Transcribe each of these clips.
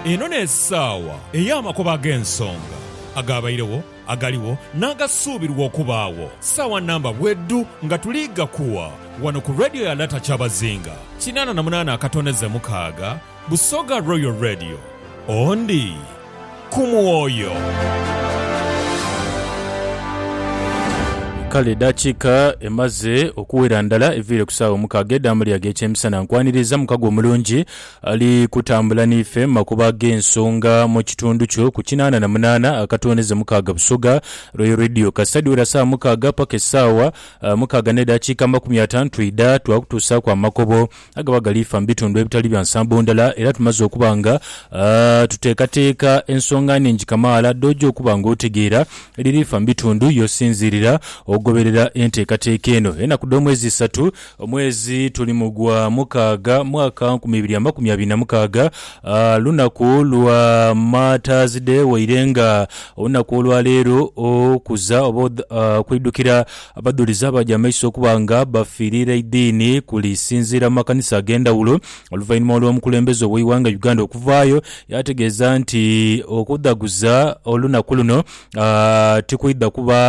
Eno n'esaawa ey'amakubo ag'ensonga, agaabairegho, agaligho, n'agasuubirwa okubaagho. Saawa namba bwedhu nga tuli ghakuwa ghano ku Radio ya Lata Kyabazinga kinaana na munaana akatondeze mukaaga, Busoga Royal Radio. Ondi ku mwoyo. Kale edaakiika emaze okuwera ndala eviire ku saawa omukaaga edha muli ag'ekyemisana. Nkwaniriza mukago omulungi ali kutambula n'ife mu makubo ag'ensonga mu kitundu kyo ku kinaana na munaana akatooneze mukaaga Busoga Royal Radio. Kasita dhiwera saawa mukaaga paka esaawa mukaaga n'edaakiika amakumi ataanu twidha twakutuusaaku amakobo agaba gali fa mu bitundu ebitali bya nsambo ndala era tumaze okuba nga tuteekateeka ensonga nhingi kamaala dh'oja okuba ng'otegeera edhiri fa mu bitundu y'osinziirira okugoberera enteekateeka eno. Enaku dh'omwezi isatu, omwezi tuli mu gwa mukaaga mwaka nkumi ibiri amakumi abiri na mukaaga, lunaku lwa Martyrs Day waire nga olunaku olwa leero okuza oba okwidhukira Abadhulizi abaja amaiso okuba nga bafiirira eidiini kuli sinziira mu makanisa ag'endhawulo oluvainhuma olw'omukulembeze ow'eighanga Uganda okuvaayo yaategeeza nti okudhaguza olunaku luno tikwidha kuba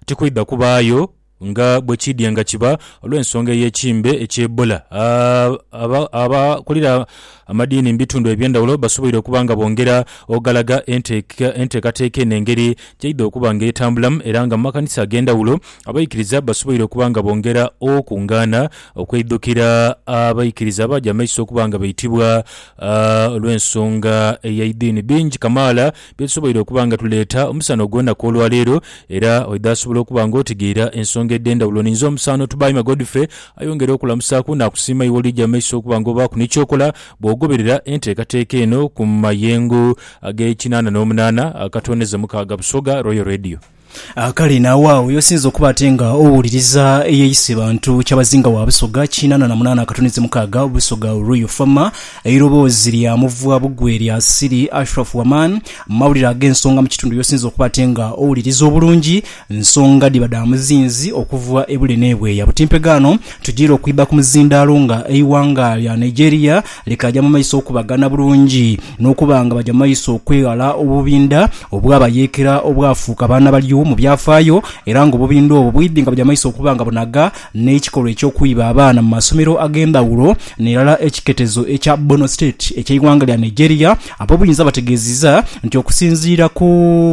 tikwidha kubaayo nga bwekiidye nga kiba olw'ensonga ey'ekimbe eky'Ebola. Abakulira Amadiini mu bitundu eby'endhawulo basoboire okuba nga bongera ogalaga enteekateeka eno engeri gy'eidha okuba nga etambulamu era nga mu makanisa ag'endhawulo abaikiriza basoboire okuba nga bongera okungaana okweidhukira abaikiriza abaaja mu maiso okuba nga baitibwa olw'ensonga ey'eidiini. Bingi kamaala bye tusoboire okuba nga tuleeta omusana ogw'onaku olwaleero. Era oidha asobola okuba nga otegeera ensonga edh'endhawulo. Ninze omusaano Tubaime Godfrey ayongere okulamusaaku naakusiima iwe olija mu maiso okuba nga obaaku ni ky'okola bw'ogoberera enteekateeka eno ku mayengo ag'ekinaana n'omunaana akatooneza mukaaga Busoga Royal Radio. Kale n'aghagho y'osinze okuba ate nga owuliriza eyeeyise Bantu Kyabazinga wa Busoga kinaana na munaana akatunhiizi mukaaga, Busoga Ruiyu Former, eiroboozi lya muvwa bugwe lya Siri Ashraf Waman, mu mawulire ag'ensonga mu kitundu y'osinze okuba ate nga owuliriza obulungi nsonga dhiba dha muzinzi okuva e bule n'e bweya. Butimpegaano tujiire okwidha ku muzindaalo nga eighanga lya Nigeria Likaaja mu maiso okubagana bulungi, n'okuba nga baja mu maiso okweghala obubinda obwabayeekera obwafuuka baana balyo mu byafaayo, era ng'obubinda obwo bwidhi nga buja mu maiso okuba nga bunhaga n'ekikolwa eky'okwiba abaana mu masomero ag'endhaghulo n'irala. Ekiketezo ekya Borno State eky'eighanga lya Nigeria ab'obuyinza bategeezizza nti okusinziira ku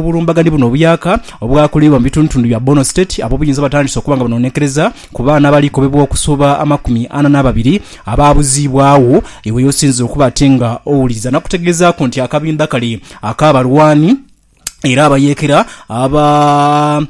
bulumbaganhi buno obuyaaka obwakoleibwa mu bitundutundu bya Borno State, ab'obuyinza batandise okuba nga banonekereza Ku baana abalikobebwa okusoba amakumi ana n'ababiri abaabuziibwagho, iwe y'osinze okuba ate nga owuliriza. Nakutegeezaaku nti akabinda kale ak'abalwani era abayeekera aba,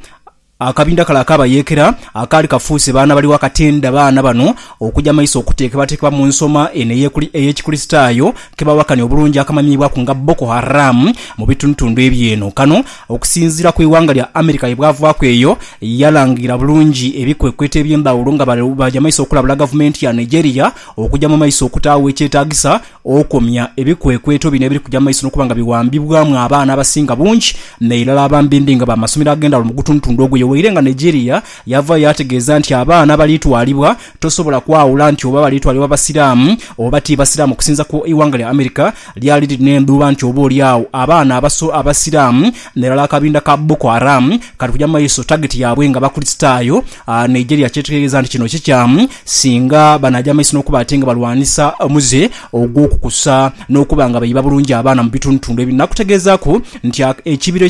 akabinda kale ak'abayeekera akaali kafuuse baana bali wakatenda baana bano okuja maiso okuteekebwateekebwa mu nsoma eno ey'Ekikristaayo ke bawakanya obulungi akamanyibwaku nga Boko Haram mu bitundutundu eby'eno. Kano. Okusinziira ku ighanga lya America ye bwavaaku eyo yalangira bulungi ebikwekweto eby'endhawulo nga baaja maiso okulabula gavumenti ya Nigeria okuja mu maiso okutaagho ekyetaagisa okomya ebikwekweto bino ebiri kuja mu maiso n'okuba nga biwambibwamu abaana abasinga bungi n'irala abambimbi nga b'amasomero ag'endhawulo mu gutundutundu ogwo. Ye waire nga Nigeria yavaayo yaategeeza nti abaana abalitwalibwa Tosobola kwawula nti oba bali twalibwa Basiraamu oba ti Basiraamu okusinza ku ighanga lya America lyali liri n'endhuba nti oba oli agho abaana abaso Abasiraamu n'erala akabinda ka Boko Haram kali kuja mu maiso tageti yaabwe nga Bakulisitaayo. Nigeria kyetegeeza nti kino kikyamu singa banaagya mu maiso n'okuba ate nga balwanisa omuze ogw'okukusa n'okuba nga baiba bulungi abaana mu bitundutundu ebyo nakutegeezaaku nti ekibira